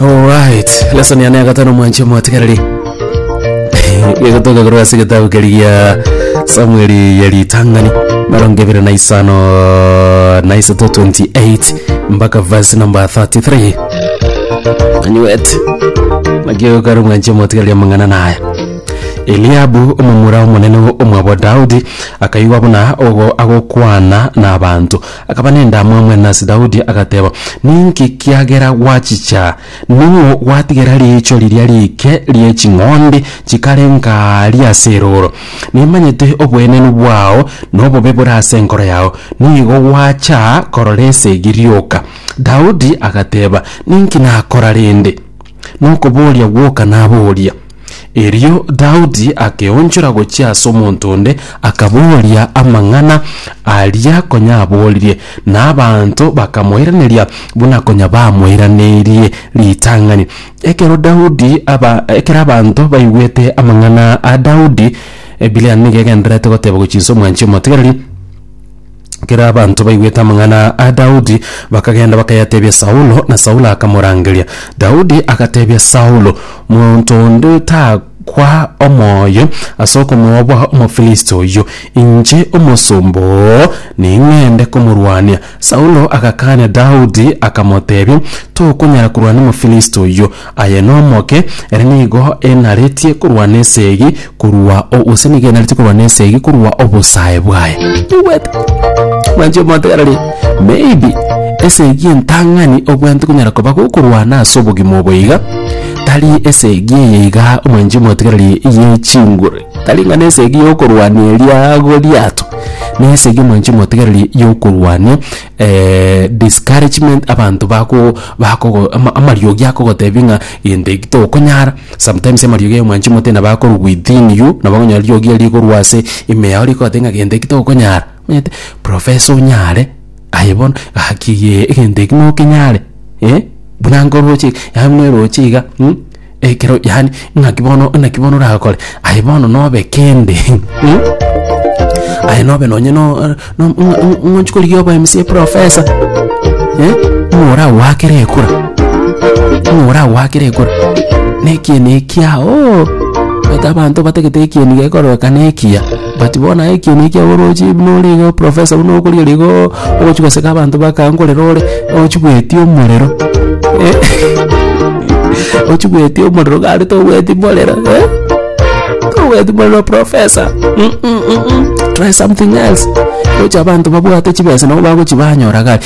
Alright, lesson ya neagatano mwanche mwatigareri gegotoka korwa ase getabu keri gia samueli ya ritang'ani marongo ebere na isano na isato 28 mpaka verse number 33 anywet nakiogokara mwanche mwatigareri amang'ana naya eliabu omomura omonene omwabo daudi akaigwa buna ogo agokwana na abanto Akaba nendamwamu ene ase Daudi, agateba, Ninki kiagera gwachicha? Ning'o gwatigera riicho riria riike rie ching'ondi chikarenga aaria ase erooro? Nimanyete oboenenu bwao, na obobe bore ase enkoro yao nigo gwacha korora esegi rioka. Daudi agateba, Ninki nakora rende? Nokoboria gwoka naboria. Erio Daudi akeonchora gochia ase omonto onde, akabooria amang'ana aria konya abooririe, na abanto bakamoiraneria buna konya bamoiranerie ritang'ani. Ekero Daudi aba ekero abanto baigwete amang'ana a Daudi, Ebireani nigo egendererete goteba gochia inse omwanchi omotigereri, Ekero abanto baigwete amang'ana a Daudi, bakagenda bakayatebia Saulo, na Saulo akamorangeria. Daudi agatebia Saulo, Monto onde takwa omoyo ase okomoa bwa Omofilisti oyio, inche omosomba oo ning'ende komorwania. Saulo agakaania Daudi, akamotebia, Tokonyara korwana n'Omofilisti oyio. Aye nomoke, ere nigo enaretie korwa nesegi korwa o, gose nigo enaretie korwa nesegi korwa obosae bwaye. Tobwate. Mwanche omontegererie. Maybe esegi entang'ani obwate konyara koba gokorwana ase obogima obo iga, tari esegi eye iga omwanchi omotegererie ye chinguru, tari ng'a nesegi yokorwania eria agwo riato, nesegi omwanchi omotegererie yokorwania discouragement abanto bako bakogo ama- amariogi akogotebia ng'a gento eki tokonyara sometimes amariogi aye mwanchi mote nabo akorwa within you nabo okonyora riogi erio rikorwa ase ime yao rigoteba ng'a gento eki tokonyara omanyete professor onyare aye bono gaki egento eki nokenyare buna nkoroche yaani buna eroche iga. ekero yaani ng'aki bono naki bono orakore aye bono nobe kende hmm? aye nobe nonye no- no- ng- ng- ng'onchi korigia obo mca eprofesa eh? ng'a oragoakere ekura ng'a oragoakere ekura na ekieni ekiao oh, ata abanto batagete ekieni gekororekana ekiya But bono aye ekiina ekiago oroche buna ore iga professor buna okorigereria igooo ogochi goseka abanto bakago nkorera ore ochigweti omorero ochigweti omorero iga aria togweti morero togweti morero professor try something else oche abanto babwate chibesa nabo bagochi banyora gari.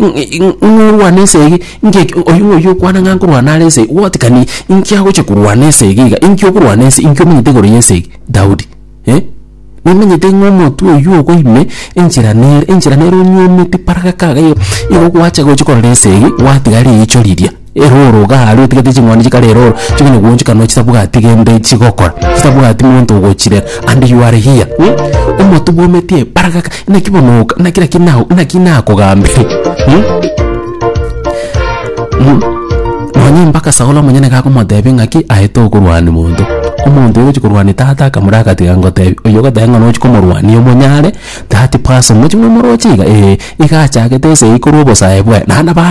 ng'a orwane ense eye, inki eki oyio ng'a oyio okwana ng'a nkorwana are ense eye, what can he inki agochia korwana ense ege iga, inki okorwana ense, inki omenyete igoro y'ense ege Daudi eh. Nomenyete ng'a omotwe oyio ogo ime enchera nere enchera nere onyiomete paragaka iga igo gwacha gochia korora ense eye, gwatiga riicho riria. Erooro igaa aria otigete ching'ondi chikare erooro chikona goonchika nonya chitabwati gende chigokora chitabwati monto ogochirera and you are here mh omotu bwa ometie baragaka naki bono oka naki naki nao naki nakogambire mh mh nonya mpaka saulo omonyene iga akomotebia ng'aki aye tokorwania monto omonto oyogochia korwania tata akamura agatiga ngotebia oyo ogoteba ng'a nochi komorwania omonyare that person mochi momoroche iga ee iga achagete ase yaikoro obosae bwaye naende ba.